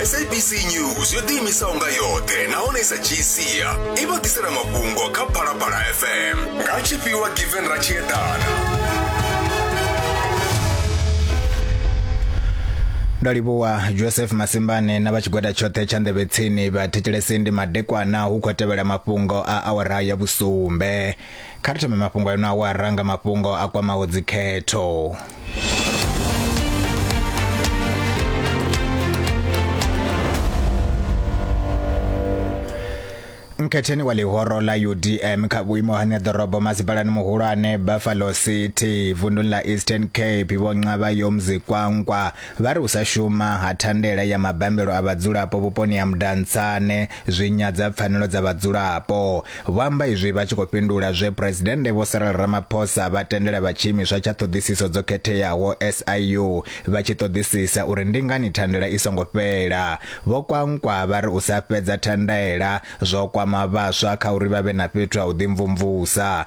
sabc news yo ḓiimisaho nga yoṱhe nahone i sa dzhii sia i vha ḓisela mafhungo kha phalaphala fm nga tshifhiwa given ra tshi eḓana ndo livhuwa joseph masimbane na vha tshigwada tshoṱhe tsha nḓevhetsini vha thetshelesi ndi madekwana hu khou tevhela mafhungo a awara ya vhusumbe Kha ri thome mafhungo a ino awara nga mafhungo a kwamaho dzikhetho. mkhetheni wa ḽihoro ḽa udm kha vhuimo ha ṋeḓorobo masipalani muhulwane buffalo city vunduni ḽa eastern cape vho nqavha yo mzikwankwa vha ri u sa shuma ha thandela ya mabambelo a vhadzulapo vhuponi ha mudantsane zwi nyadza pfanelo dza vhadzulapo. Vho amba izwi vha tshi khou fhindula zwe Phresidennde Vho Cyril Ramaphosa vha tendela vha tshiimiswa tsha ṱhoḓisiso dzo khetheaho SIU vha tshi ṱoḓisisa uri ndi ngani thandela i songo fhela. Vho Kwankwa vha ri u sa fhedza thandela zwo kwama vhaswa kha uri vha vhe na fhethu ha u ḓimvumvusa.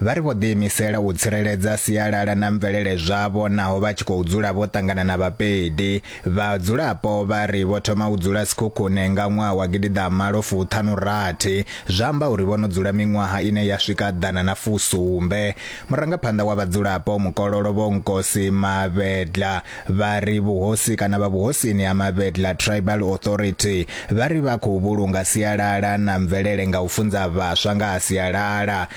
Vha ri vho ḓiimisela u tsireledza sialala na mvelele zwavho naho vha tshi khou dzula vho ṱangana na vhapedi. Vhadzulapo vha ri vho thoma u dzula Sekhukhune nga ṅwaha wa gidiḓa malo fuṱhanu rathi, zwa amba uri vho no dzula miṅwaha ine ya swika ḓana na fusumbe. Murangaphanḓa wa vhadzulapo Mukololo Vho Nkosi Mavhedla vha ri vhuhosi kana vha vhuhosini ha Mavhedla Tribal Authority vha ri vha khou vhulunga sialala na mvelele nga u funza vhaswa nga ha sialala.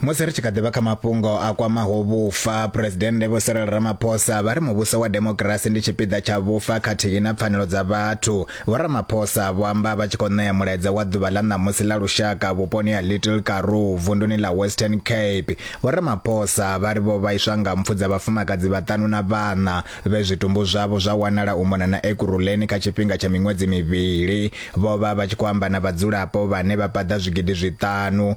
Musi ri tshi kha ḓi vha kha mafhungo a kwamaho vhufa, Phresidennde Vho Cyril Ramaphosa vha ri muvhuso wa demokirasi ndi tshipiḓa tsha vhufa khathihi na pfanelo dza vhathu. Vho Ramaphosa vho amba vha tshi khou ṋea mulaedza wa ḓuvha ḽa ṋamusi ḽa lushaka vhuponi ha Little Karoo vunduni ḽa Western Cape. Vho Ramaphosa vha ri vho vhaiswa nga mpfu dza vhafumakadzi vhaṱanu na vhaṋa vhe zwitumbu zwavho zwa wanala u mona na Ekurhuleni kha tshifhinga tsha miṅwedzi mivhili. Vho vha vha tshi khou amba na vhadzulapo vhane vha paḓa zwigidi zwiṱanu.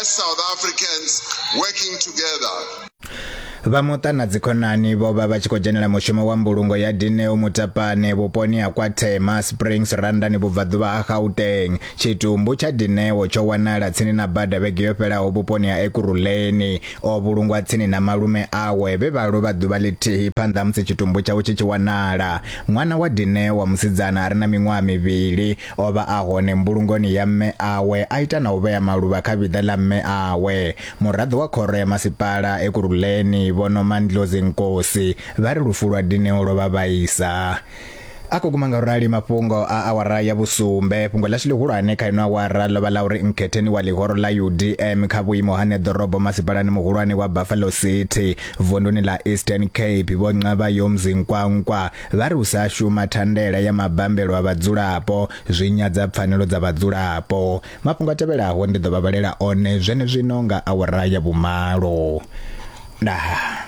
As South Africans working together. vha muṱa na dzikhonani vho vha vha tshi khou dzhenela mushumo wa mbulungo ya dineo mutapane vhuponi ha kwa thema springs randani vhubvaḓuvha ha gauteng tshitumbu tsha dineo tsho wanala tsini na bada vhege yo fhelaho vhuponi ha ekuruleni o vhulungwa tsini na malume awe vhe vha lovha ḓuvha ḽithihi phanḓa musi tshitumbu tshawe tshi tshi wanala ṅwana wa dineo wa musidzana a re na miṅwaha mivhili O vha a hone mbulungoni ya mme awe a ita na u vhea maluvha kha vhiḓa ḽa mme awe. Muraḓo wa khoro ya masipala Ekurhuleni Vho Nomandlozi Nkosi vha ri lufu lwa Dineo lwo vha vhaisa. A khou guma nga u rali mafhungo a awara ya vhusumbe. Fhungo ḽashu ḽihulwane kha ino awara ḽo vha ḽa uri Nkhetheni wa ḽihoro ḽa UDM kha vhuimo ha neḓorobo masipalani muhulwane wa Buffalo City vunduni ḽa Eastern Cape Vho Nqabayomzi Nkwankwa Vha ri u sa shuma thandela ya mabambelo a vhadzulapo zwi nyadza pfanelo dza vhadzulapo. Mafhungo a tevhelaho ndi ḓo vha vhalela one zwenezwino nga awara ya vhumalo. Ndaa.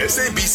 SABC